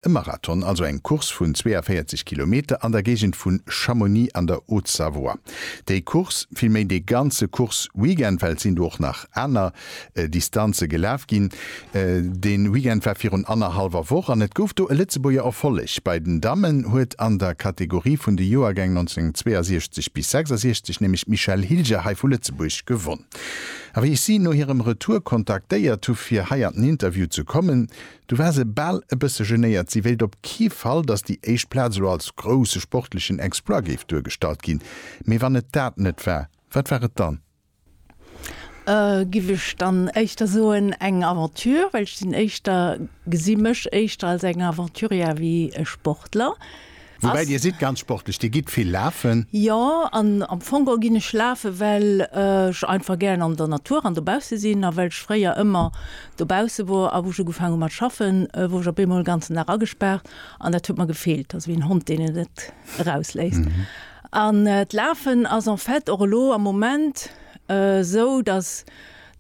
E Marathon, also eng Course vun 42 Kilometer an der Géigend vu Chamonix an der Haute-Savoie. Déi Course, vill méi dee ganze Course-Weekend, well et sinn do och nach aner Distanze gelaf ginn, dee Weekend war virun annerhallwer Woch an et gouf do e Lëtzebuerger Erfolleg. Bei den Dammen huet an der Kategorie vun de Joergäng 1962 bis 66 nämlech d'Michèle Hilger hei vu Lëtzebuerg gewonn. A wéi ech si no hirem Retour kontaktéiert hu fir hei an den Interview ze kommen, Du war se bal e bësse genéiert. Si wéilt op kee Fall, datt déi éischt Plaz elo als grousse sportlechen Exploit géif duergestallt ginn. Mee wann et dat net war, wat war et dann? Giff ech dann éischter soen, eng Aventure, well ech sinn éischter, gesi mech éischter als eng Aventurière wéi e Sportler. Woubäi Dir sidd ganz sportlech, Dir gitt vill lafen. Jo, an am Fong geholl ginn ech lafen, well ech einfach gären an der Natur an dobausse sinn a well ech fréier ëmmer dobausse wor. A wou ech ugefaange hu mat schaffen, wor ech op eemol en ganzen Dag agespaart an dat huet mer gefeelt, also wéi en Hond, deen et net erausléisst. An d'Lafen ass en fait och elo am Moment esou, datt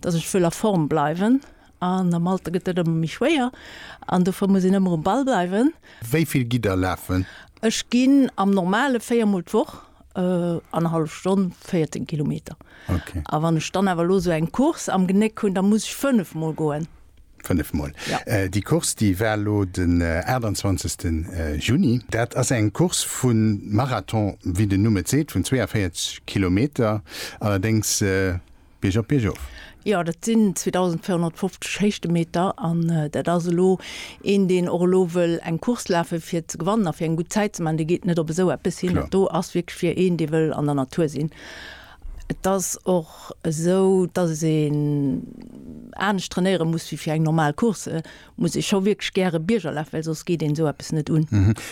ech wëll a Form bleiwen An am Alter gëtt dat ëmmer méi schwéier an dofir muss een ëmmer um Ball bleiwen. Wéi vill gitt Der lafen? Ech ginn am normale véier Mol d'Woch annerhallef Stonn, 14 Kilometer. A wann ech dann awer elo esou eng Course am Genéck hunn, da muss ech fënnef Mol goen. Fënnef Mol. Déi Course, déi war elo den 28. Juni. Dat ass eng Course vu Marathon, wéi den Numm et seet, vun 42 Kilometer. Allerdéngs. Bierg op Bierg of. Jo, dat sinn 2.450 Héichtemeter an dat ass elo een, deen och elo wëll eng Course lafe fir ze gewannen a fir eng gutt Zäit ze maachen, dee geet net op esou eppes hin. Dat do ass wierklech fir een, dee wëll an der Natur sinn. Et ass och esou, datt een anescht trainéiere muss wéi fir eng normal Course. Et muss ee scho wierklech gäre Bierger lafen, well soss geet een esou eppes net un.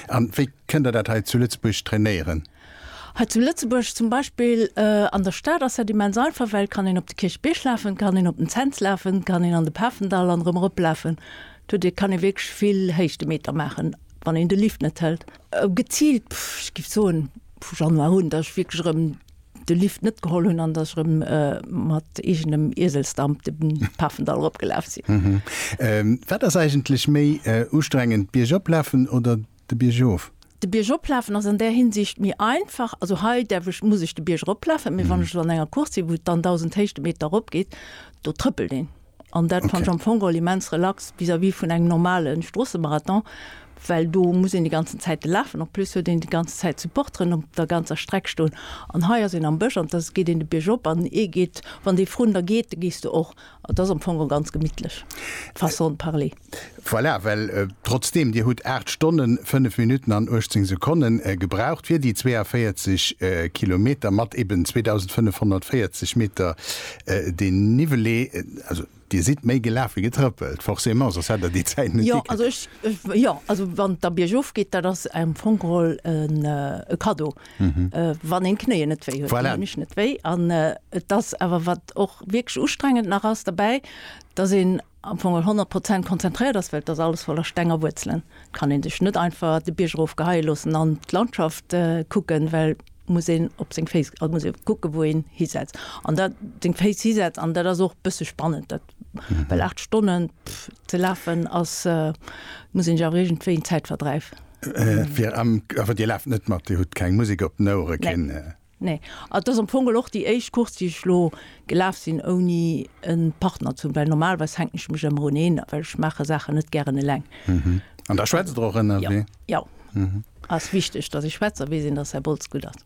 An wéi kënnt Der dat hei zu Lëtzebuerg trainéieren? Hei zu Lëtzebuerg zum Beispill an der Stad ass dat immens einfach, well et kann een op de Kierchbierg lafen, et kann een op den Cents lafen, et kann een an de Pafendall an erëm eroplafen. Do kann ee wierklech vill Héichtemeter maachen, wann een de Lift net hëlt. Geziilt, ech géif soen vu Januar un, datt ech wierklech erëm de Lift net geholl hunn an datt ech erëm mat eegenem Ieselsdamp de Pafendall eropgelaf sinn. Wat ass eigentlech méi ustrengend, d'Bierg oplafen oder de Bierg of. De Bierg oplafen ass an där Hinsicht méi einfach, also hei däerf ech, muss ech de Bierg eroplafen, mee wann ech elo an enger Course sinn, wou et dann 1.000 Héichtemeter eropgeet, do trëppelt een. An dat fannt ech am Fong geholl immens relax vis-à-vis vun engem normale Stroossemarathon, well do muss een déi ganzen Zäite lafen. En plus huet een déi ganze Zäit Supporteren op der ganzer Streck stoen an hei ass een am Bësch an da geet een de Bierg op an ee geet, wann dee vrun der geet, da gees du och. Et ass am Fong och ganz gemittlech, façon de parler. Voilà, well trotzdeem Dir hutt 8 Stonnen, 5 Minutten an 18 Sekonne gebraucht fir déi 42 Kilometer mat eben 2.540 Meter Dénivelé, also Dir sidd méi gelaf wéi getrëppelt, forcément, soss hätt Der déi Zäit net gikritt. Jo, also ech, jo, also wann et da biergof geet, dat ass am Fong geholl e Cadeau, mhm. äh, wann en Knéie net wéi huet voilà. mech net wéi an äh, das awer wat och wierklech ustrengend nach ass dabei, dat sinn am Fong 100 Prozent konzentriert ass, well dat alles voller Stenger Wuzelelen. Kan en sech net einfach de Biergerroof geheil loossen an d'Landschaft äh, kucken, well muss een op seng Féis, also muss een kucke wou een hisetzt. An dat deng Féis hisetzt an dat ass och bësse spannend dat Well 8 Stonnen ze lafen ass, muss een jo régent wéi en Zäitverdreif. Fir am, awer Dir laaft net mat, Dir hutt keng Musek op den Ouere, keen. Nee, et ass am Fong geholl och déi éischt Course, déi ech elo gelaf sinn ouni e Partner ze hunn, well normalerweis hänken ech mech ëmmer un een, well ech maache Saachen net gären eleng. An da schwätzt der och ënnerwee? Jo, ass wichteg, datt ee schwätzt a weess een, datt Här Boltz gutt ass.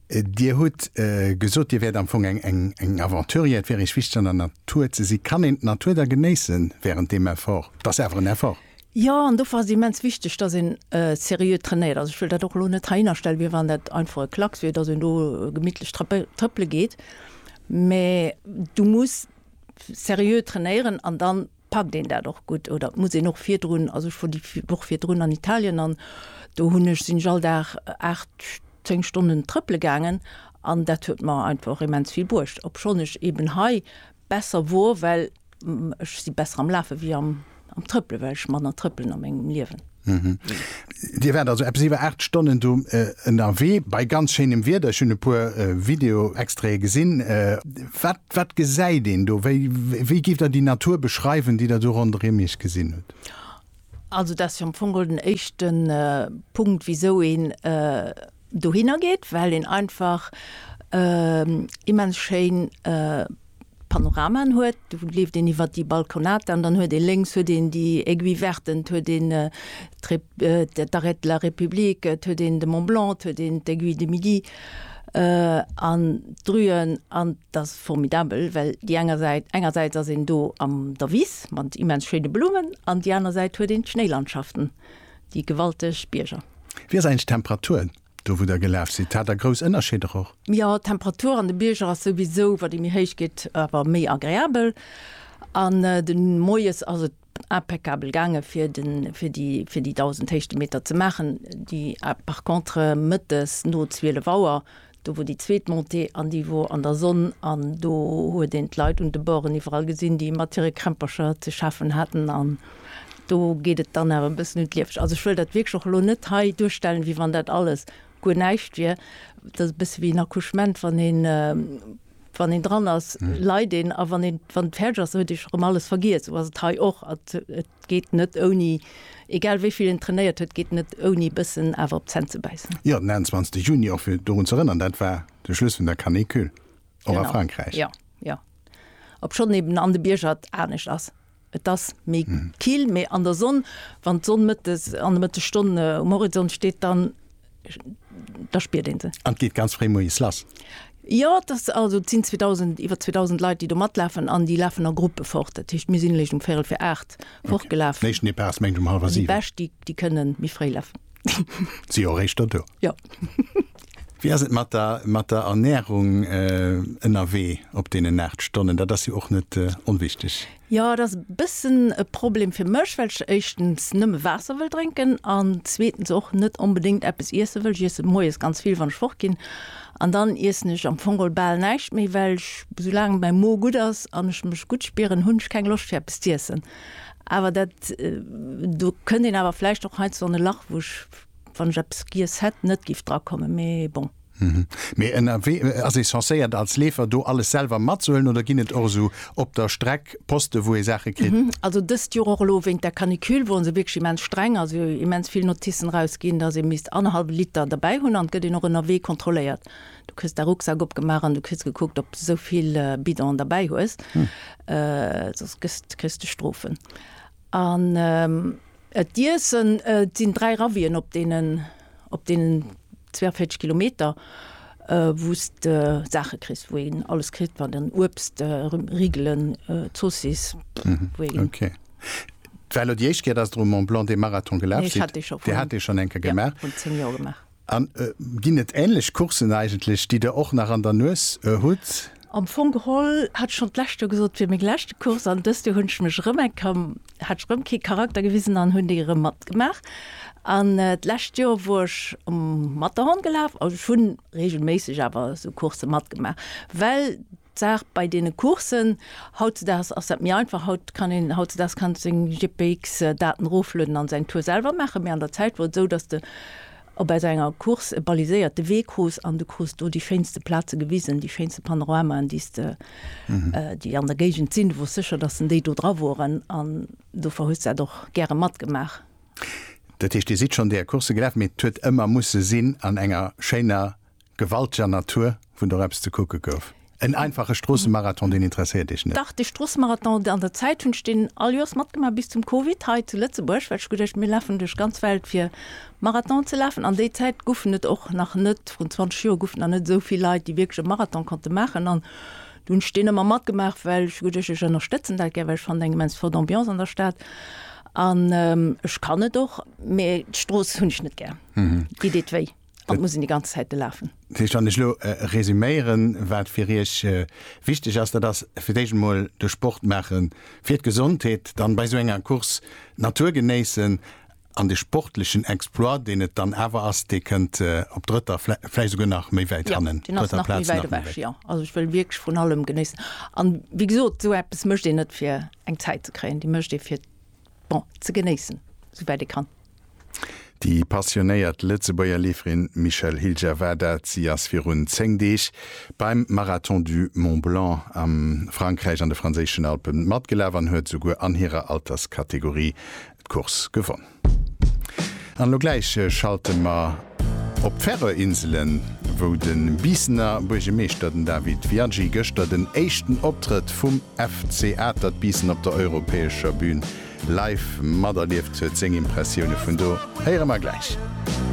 Dir hutt gesot, Dir wäert am Fong eng Aventurier, et wär Iech wichteg an der Natur ze si. Kann een d'Natur da genéisse wärend deem Effort? Et ass awer en Effort. Jo, an dofir ass et immens wichteg, datt een seriö trainéiert. Also ech wëll dat och elo net heihinnerstellen, wéi wann dat einfach e Klacks wier, datt een do gemittlech trëppele geet. Mä du muss seriö trainéieren an dann packt een dat och gutt oder muss een och virdrun, also ech wor déi Woch virdrun an Italien an do hunn ech, sinn ech all Dag 8, 10 Stonnen trëppele gaangen an dat huet mer einfach immens vill bruecht, obschonn ech eeben hei besser wor, well ech si besser am Lafe wéi am Trëppele, well ech manner trëppelen a mengem Liewen. Mhm. Dir wärt also eppes iwwer 8 Stonnen do äh, ënnerwee, bei ganz schéinem Wieder. Ech hunn e puer äh, Video-Extrae gesinn. Äh, wat, wat gesäit een do? Wéi, wéi gift der déi Natur beschreiwen, déi der do ronderëm iech gesinn hutt? Also dat ass jo am Fong den éischten äh, Punkt, wisou een äh, dohinner geet, well een einfach immens schéin Panoramaen huet. Do leeft een iwwer déi Balconata an dann huet ee lénks huet een déi Aiguille Verte, et huet een d'Arrêt de la République, et huet een de Mont Blanc, et huet een d'Aiguille du Midi an d'Rüen. An et ass formidabel, well déi enger Säit, engersäits ass een do an der Wiss mat immens schéine Blummen an déi aner Säit huet een d'Schnéilandschaften. Déi gewalteg Bierger. Wéi ass eigentlech d'Temperatur do wou der gelaf sidd? Hat der grouss Ënnerscheeder och? Jo, d'Temperatur an de Bierger ass souwisou, wat ee méi héich geet, awer méi agreabel. An de Moies ass et impeccabel gaange fir de fir déi fir déi 1.000 Héichtemeter ze maachen, déi par contre Mëttes no 12 Auer Do wor déi zweet Montée an déi wor an der Sonn an do huet een d'Leit un de Borden iwwerall gesinn, déi mat hire Krämpercher ze schaffen haten an do geet et dann awer e bëssen un d'Lieweg. Also ech wëll dat wierklech och elo net hei duerstellen, wéi wann dat alles guer näischt wier. Dat ass e bësse wéi en Accouchement, wann een, wann een dran ass, leit een a wann een, wann et fäerdeg ass, huet ee scho rëm alles vergiess. Esou ass et hei och. Geet net ouni. Egal wéi vill en trainéiert huet, geet net ouni e bëssen awer op d'Zänn ze bäissen. Jo, den 21 Juni, och fir dorun ze erënnern, dat war de Schluss vun der Canicule, och a Frankräich. Genau, jo, jo. Obschonn eben an de Bierger et anescht ass. Et ass méi kill, mee an der Sonn, wann d'Sonn mëttes, an de Mëttesstonne um Horizont steet, dann. da spiert een se. An geet ganz fréi moies lass? Jo, dat also sinn 2000, iwwer 2000 Leit, déi do matlafen an déi lafen a Gruppe fort. Dat heescht, mir sinn lech um Véierel vir 8 fortgelaf. Okay. Néischten Depart ass mengt um hallwer 7. Déi Bescht, déi, déi kënnen méi fréi lafen. Si jo eréischter do. Jo. Wéi ass et mat der, mat der Ernährung ënnerwee op deenen 8 Stonnen? Dat ass jo och net onwichteg. Jo, et ass e bëssen e Problem fir mech, well ech éischtens nëmme Waasser wëll drénken an zweetens och net onbedéngt eppes iesse wëll. Ech iesse moies ganz vill, wann ech fort ginn, an dann iessen ech am Fong geholl bal näischt méi, well ech, esou laang mäi Mo gutt ass an ech mech gutt spieren, hunn ech keng Loscht fir eppes z'iessen. Awer dat, do kënnt een awer vläicht och heiansdo an e Lach, wou ech, wann ech eppes giess hätt, net giff drakommen. Mee bon. Mee ënnerwee ass ee censéiert als Leefer do alles selwer matzehuelen oder ginn et och esou op der Streck Poste wou ee Saache kritt? Also dëst Joer och elo wéint der Canicule woren se wierklech immens streng, also jo immens vill Noticen eraus ginn, dass ee misst annerhallwe Liter derbäi hunn an et gëtt een och ënnerwee kontrolléiert. Du kriss däi Rucksak opgemaach an du kriss gekuckt ob de sou vill Bidonen derbäi hues, soss kriss de Strofen. An d'Iessen, et sinn 3 Ravien op deenen, op deenen. 42 Kilometer, wou s de Saache kriss, wou een alles kritt, wat en, Uebst, Riegelen, Zoossiss, wou een. Okay. War elo déi éischt Kéier, dass Der um Mont Blanc dee Marathon gelaf sidd? Nee, ech hat dee scho vun. Dir hat dee schonn eng Kéier gemaach? Jo, vrun 10 Joer gemaach. An ginn et änlech Courssen eigentlech, déi Der och nach an der Nues hutt? Am Fong geholl hat ech schonn d'lescht Joer gesot, et wier meng leschte Course an dëst Joer hunn ech mech erëm eng, ka, hat ech erëm kee Charakter gewisen an hunn déi erëm matgemaach. An d'lescht Joer wor ech um Matterhorn gelaf, also ech hu reegelméisseg awer esou Coursse matgemaach, well d'Saach bei deene Courssen, hautzedaags ass dat méi einfach, haut kann een, hautzedaags kann seng GPX-Daten eroflueden an säin Tour selwer maachen, mee an der Zäit wor et esou, datt de Ob aus enger Course e baliséierte Wee krus an du krus do déi schéinste Plaze gewisen, déi schéinste Panoramaen, déi s de, déi an der Géigend sinn. Du wors sécher, dass en déi do dra woren an dofir hues dat och gäre matgemaach. Dat heescht, Dir sidd schonn där Course gelaf, mee et huet ëmmer musse sinn an enger schéiner Gewalteger Natur, wou nach eppes ze kucke gouf. En einfache Stroossemarathon, deen interesséiert Iech net? Dach, de Stroossemarathon an der Zäit hunn ech deen all Joers matgemaach, bis zum Covid hei zu Lëtzebuerg, well ech hu geduecht, mir lafen duerch d'ganz Welt fir Marathonen ze lafen. An déi Zäit goufen et och nach net, vrun 20 Joer goufen et nach net esou vill Leit, déi wierklech e Marathon konnte maachen. An du hunn ech deen ëmmer matgemaach, well ech hu geduecht, ech ënnerstëtzen dat gär, well ech fannen eng immens flott Ambiance an der Stad. An ech kann et och, mee d'Strooss hunn ech net gär, déi deet wéi. an et muss een déi ganz Zäit de lafen. Dat heescht, wann ech elo resuméieren, wat fir Iech wichteg ass, dat ass fir d'éischt emol de Sport maache fir d'Gesondheet, dann bei esou enger Course d'Natur genéissen an de sportlechen Exploit, deen et dann awer ass, dee kënnt op drëtter, vläicht esouguer nach méi wäit hannen, drëtter Plaz nach méi wäit. Jo, deen ass nach méi wäit ewech, jo. Also ech wëll wierklech vrun allem genéissen. An wéi gesot, esou eppes mécht een net fir eng Zäit ze kréien, déi mécht ee fir, bon, ze genéissen, esou wäit ee kann. Déi passionéiert Lëtzebuerger Leeferin Michèle Hilger war dat. Si ass virun 10 Deeg beim Marathon du Mont Blanc a Frankräich an de franséischen Alpe matgelaf an huet souguer an hirer Alterskategorie d'Course gewonn. An elo gläich schalte mer op d'Färöer-Inselen, wou de Biissener Buergemeeschter, den Dawid Viadji, gëschter den éischten Optrëtt vum FC Atert Biissen op der europäescher Bün live materlieft huet. Seng Impressioune vun do héiere mer gläich.